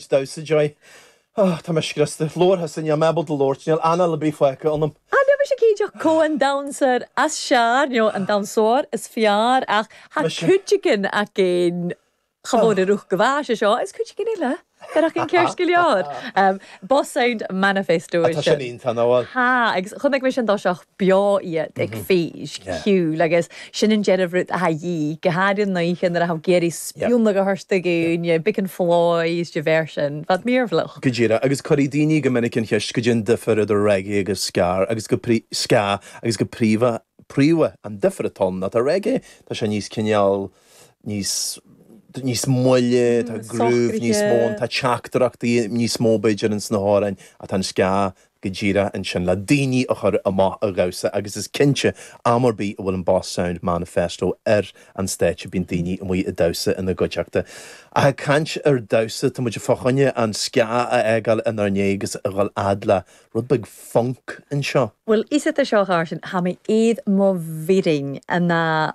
damhsa, joy, Ahh, tá mé scriosta. Labhartha, sin, níl mé ábalta labhairt, níl anáil ar bith fágtha ionam. Ah, níl mise cinnteach cé an damhsóir is fearr nó an damhsóir is fearr ach tá cuid again againn chomh mór i ruth go bhfeá sé seo is cuid againn eile gur ach an ceart go leor. Boss Sound Manifesto é sin. Tá sin iontach, an bhfuil? Tá, agus chonaic mise i dtosach. beo iad ag feis cheoil agus sin an deireadh rud atá a dhíth go háirithe an oíche nuair atá tú ag iarraidh spionnadh a thabhairt do dhaoine big and flies de bharr sin fad mearbhlach. Go díreach agus cuirfidh daoine go minic an cheist caidé an difear idir reggae agus ska agus go ska agus go príomha príomha an difear atá ann ná tá reggae tá sé níos cineál níos níos moille tá groove níos mó ann tá teachtaireachtaí níos mó b'fhéidir ins na hamhráin tá an ska go díreach ansin le daoine a chur amach a dhamhsa agus is cinnte am ar bith a bhfuil an Boss Sound Manifesto ar an stáitse bíonn daoine amuigh ag damhsa ina gcuideachta. Ach ag caint ar dhamhsa, tá muid fá choinne an ska a fhágáil inár ndiaidh agus a dhul fhad le rud beag func anseo. Bhuel, is atá seo, a Mháirtín, tá mé i mo bhírinn, an ea?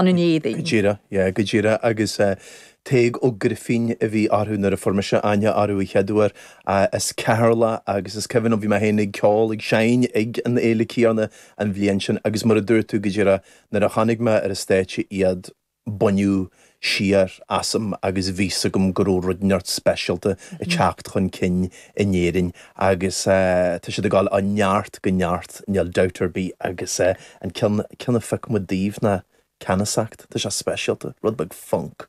an Neidín. Go díreach, yeah, go díreach agus Tadhg Ó Grifín a bhí orthu nuair a fuair mise aithne orthu a chéaduair as Ceatharlach agus is cuimhin liom bhí mé féin ag ceol, ag seinn ag an fhéile chéanna an bhliain sin agus mar a dúirt tú go díreach nuair a chonaic mé ar an stáitse iad baineadh siar asam agus bhí 'fhios agam go raibh rud inteacht speisialta ag teacht chun cinn in Éirinn agus tá siad ag dul ó neart go neart níl dabht ar bith agus. An ceann a phioc muid daoibh ná Ceannasacht. Tá sé speisialta, rud beag func.